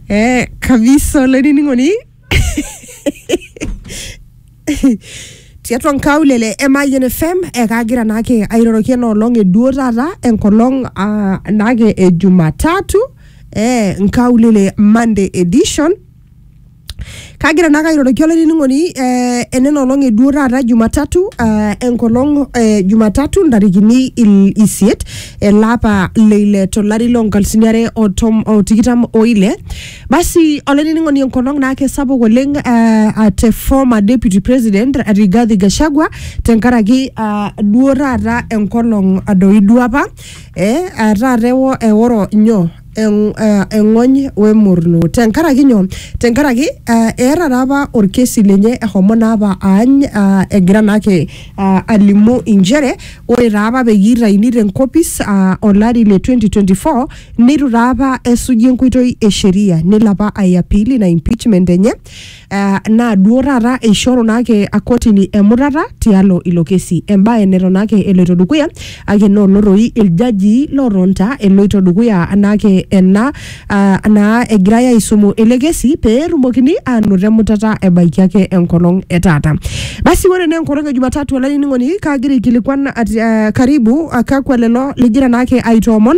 Eh, kabisa olainining'oni tiatua nkaulele e Mayian FM ekaagira naake airoroki ena olong eduo taata enkolong ah, naake e Jumatatu eh, nkaulele Monday edition Kagira naake airoroki olainining'oni eh, enena olong e duo taata Jumatatu eh, enkolong eh, Jumatatu ntarikini il- isiet ele apa le ile tolari loo nkalifuni are o tom- o tikitam o ile. Basi olainining'oni enkolong naake sapuk oleng eh, ah, te former deputy president Rigathi Gachagua tenkaraki ah, duo taata enkolong doi duo apa eh, ah, taata ewo- eoro nyoo eng- eh, eng'ony wemurlu tenkaraki nyoo tenkaraki eh, eeta taa apa orkesi lenye ehomo naa apa aany ah, egira naake ah, alimu inchere ore taa apa peyie itaini tenkopis ah, olari le 2024 neitu taa apa esuji enkoitoi e sheria nelo apa aiapil ina impeachment enye eh, naa duo taata eishoru naake akotini emutata tialo ilo kesi embae neton ake eloito dukuya ake nolotoi iljajii lotonta eloito dukuya anaake ena ah, naa egirai aisumu ele kesi pee etumokini aanoto emutata ebaiki ake enkolong e taata basi ore naa enkolong e jumatatu olainining'oni kaagira aikilikuan ati- eh, karibu ah, kakwa lelo ligira naake aitoomon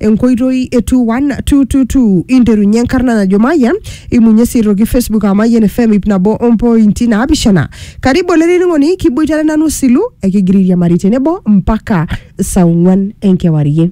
enkoitoi e 21222 interunye enkarna najo Mayian imunye sii aitoki Facebook aa Mayian FM ip nabo ompointi naapishana karibu olainining'oni kiboitare nanu silu ekigira airiamari tenebo mpaka saa ong'uan enkewarie